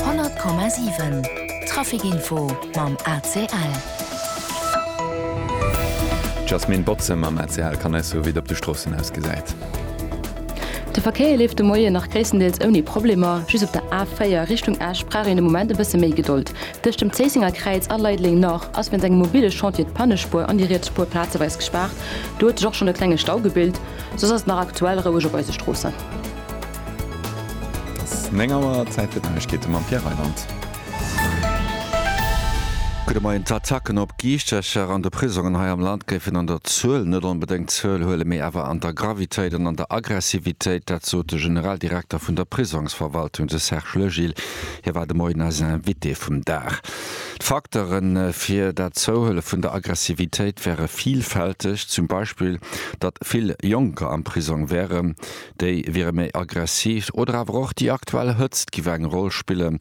100,7 Trafic Info mam ACL. D'Jasmine Botze mam ACL kann eis soe wéi et op de Stroossen ausgesäit. De Verkéier leeft de Moien nach gréisstendeels ouni Problemer. Just op der A4 Richtung Esch brauch een de Moment e bësse méi Gedold. Tëscht dem Zéissenger Kräiz a Leideleng Nord ass wéinst engem mobile Chantier d'Pannespuer an déi riets Spuer plazeweis gespaart. Do huet sech och schonn e klenge Stau gebilt. Soss ass et nach aktuell roueg op eise Stroossen. Et ass 9 Auer, Zäit fir d'Neiegkeete mam Pierre Reyland. Gudde Moien. D'Attacken op Giischtercher an de Prisongen hei am Land géifen an der Zuel net onbedéngt zouel huelen, mee awer an der Gravitéit an an der Aggressivitéit. Dat sot de Generaldirekter vun der Prisongsverwaltung, de Serge Legil. Hie war de Moien eisen Invité vum Dag. D'Facteure fir dat Zouhuele vun der Aggressivitéit wäre villfälteg. Zum Beispill, datt vill Jonker am Prisong wären, déi wiere méi aggressiv oder awer och déi aktuell Hëtzt giff eng Roll spillen.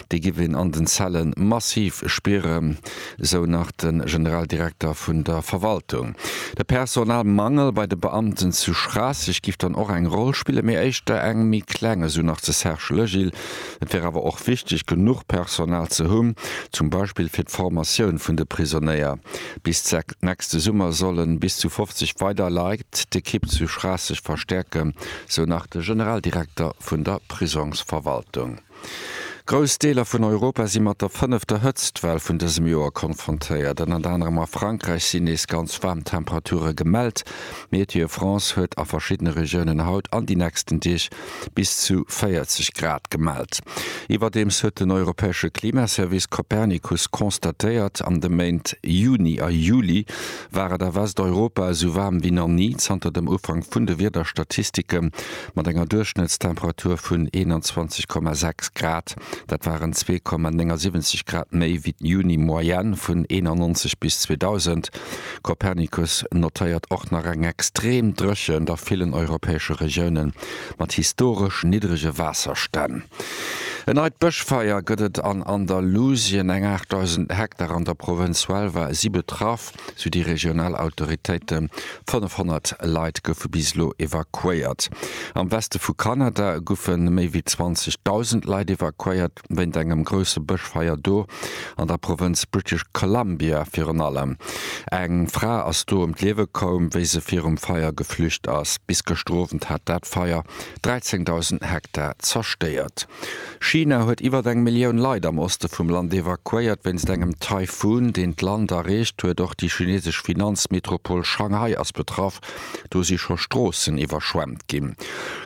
Déi giff een an den Zelle massiv spieren, sou nach de Generaldirekter vun der Verwaltung. De Personalmangel bei de Beamten zu Schraasseg giff dann och eng Roll spillen, mee éischter eng méi kleng, esou nach de Serge Legil. Et wär awer och wichteg, genuch Personal ze hunn, zum Beispill fir d'Formatioun vun de Prisonnéier, Bis nächste Summer solle bis zu 50 weider Leit d'Ekipp zu Schraasseg verstäerken, sou nach de Generaldirekter vun der Prisongsverwaltung. Grouss Deeler vun Europa si mat der fënnefter Hëtztwell vun dësem Joer konfrontéiert. Ënnert anerem a Frankräich sinn nees ganz waarm Temperature gemellt. Météo France huet a verschiddene Regiounen haut an déi nächsten Deeg bis zu 40 Grad gemellt. Iwwerdeems huet den europäesche Klimaservice Copernicus constatéiert, an de Méint Juni a Juli war et a Westeuropa esou waarm wéi nach ni zanter dem Ufank vun de Wiederstatistike mat enger Duerchschnëttstemperatur vun 21,6 Grad, dat waren 2,79 Grad méi wéi d'Juni-Moyenne vun 1991 bis 2000. Copernicus notéiert och nach eng extrem Dréchent a villen europäesche Regioune mat historesch niddrege Waasserstänn. En neit Bëschfeier gëtt et an Andalusien, eng 8.000 Hektar an der Provënz Huelva si betraff, sou déi regional Autoritéiten. 500 Leit goufe bis elo evakuéiert. Am Weste vu Kanada goufe méi wéi 20.000 Leit evakuéiert, wéint engem grousse Bëschfeier do, an der Provënz British Columbia virun allem. Eng Fra ass do ëm d'Liewe koum, wéi se virum Feier geflücht ass. Bis gëschter Owend hat dat Feier 13.000 Hektar zerstéiert. China huet iwwert eng Millioun Leit am Oste vum Land evakuéiert, wéinst engem Taifun, deen d'Land erreecht huet. Och déi chinesesch Finanzmetropol Shanghai ass betraff. Do si scho Stroossen iwwerschwemmt ginn.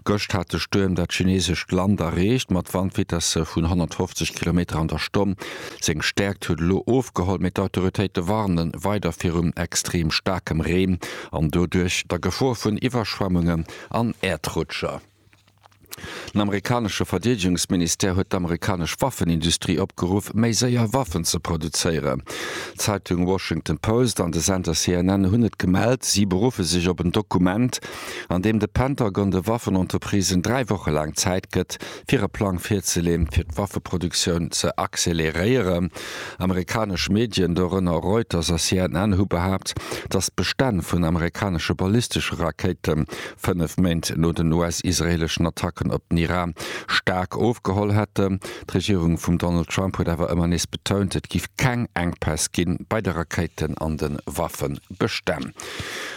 Gëscht hat de Stuerm dat chineesescht Land erreecht, mat Wandvitesse vun 150 Kilometer an der Stonn. Seng Stäerkt huet elo ofgeholl, mee d'Autoritéite warne weider virum extrem staarkem Reen an doduerch der Gefor vun Iwwerschwemmungen an Äerdrutscher. Den amerikanesche Verdeedegungsministère huet d'amerikanesch Waffenindustrie opgeruff, méi séier Waffen ze produzéieren. D'Zeitung Washington Post an de Sender CNN hunn et gemellt. Si beruffe sech op en Dokument, an deem de Pentagon de Waffenentreprisen dräi Woche laang Zäit gëtt, fir e Plang virzeleeën, fir d'Waffeproduktioun ze acceleréieren. Amerikanesch Medien, dorënner Reuters a CNN, hu behaapt, datt d'Bestänn vun amerikanesche ballistesche Rakéite fënnef Méint no den US-israeeleschen Attacken op den Iran staark ofgeholl hätten. D'Regierung vum Donald Trump huet awer ëmmer nees betount, et giff keng Enkpäss ginn bei de Rakéiten an de Waffebestänn.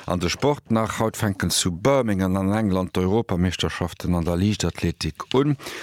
An de Sport nach, Haut fänken zu Birmingham an England d'Europameeschterschaften an der Liichtathletik un.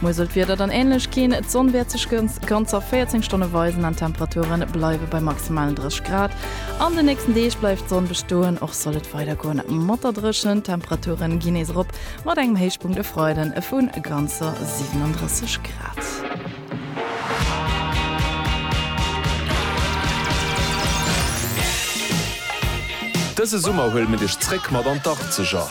Muer soll d'Wieder dann änlech ginn, d'Sonn wäert sech ganzer 14 Stonne weisen an d'Temperature bleiwe bei maximalen 30 Grad. An de nächsten Deeg bleift d'Sonn bestoen, och soll et weider goen mat der Dréchent. D'Temperature ginn nees erop, mat engem Héichpunkt e Freiden vu ganzer 37 Grad. Dëse Summer huele mir dech zréck mat an d'Arkzeger!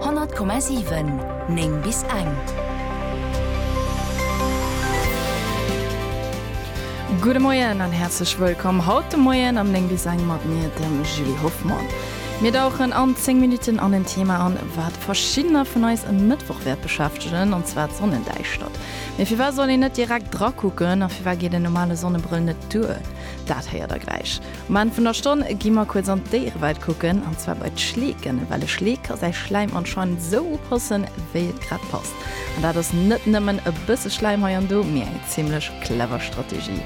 100,7 9 bis eng. Gudde Moien an häerzlech wëllkomm haut de Moien am 9 bis eng mat mir, dem Julie Hoffmann. Mir dauchen an 10 Minutten an en Thema an, wat verschiddener vun eis e Mëttwoch wäert beschäftegen, an zwar d'Sonnendäischtert. Mee firwat soll een net direkt drakucken a firwat geet en normale Sonnebrëll net duer? Dat héiert der gläich. Um Enn vun der Stonn gi mer kuerz an d'Déierewelt kucken, an zwar bei d'Schleeken, well e Schleek ka säi Schläim anscheinend esou upassen, wéi et grad passt. An dat ass net nëmmen e bësse Schläim hei an do, mee eng zimmlech clever Strategie.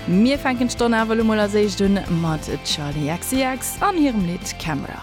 Mir fänken d'Stonn awer elo mol als éischt un mat Charli XCX an hirem Lidd Camera.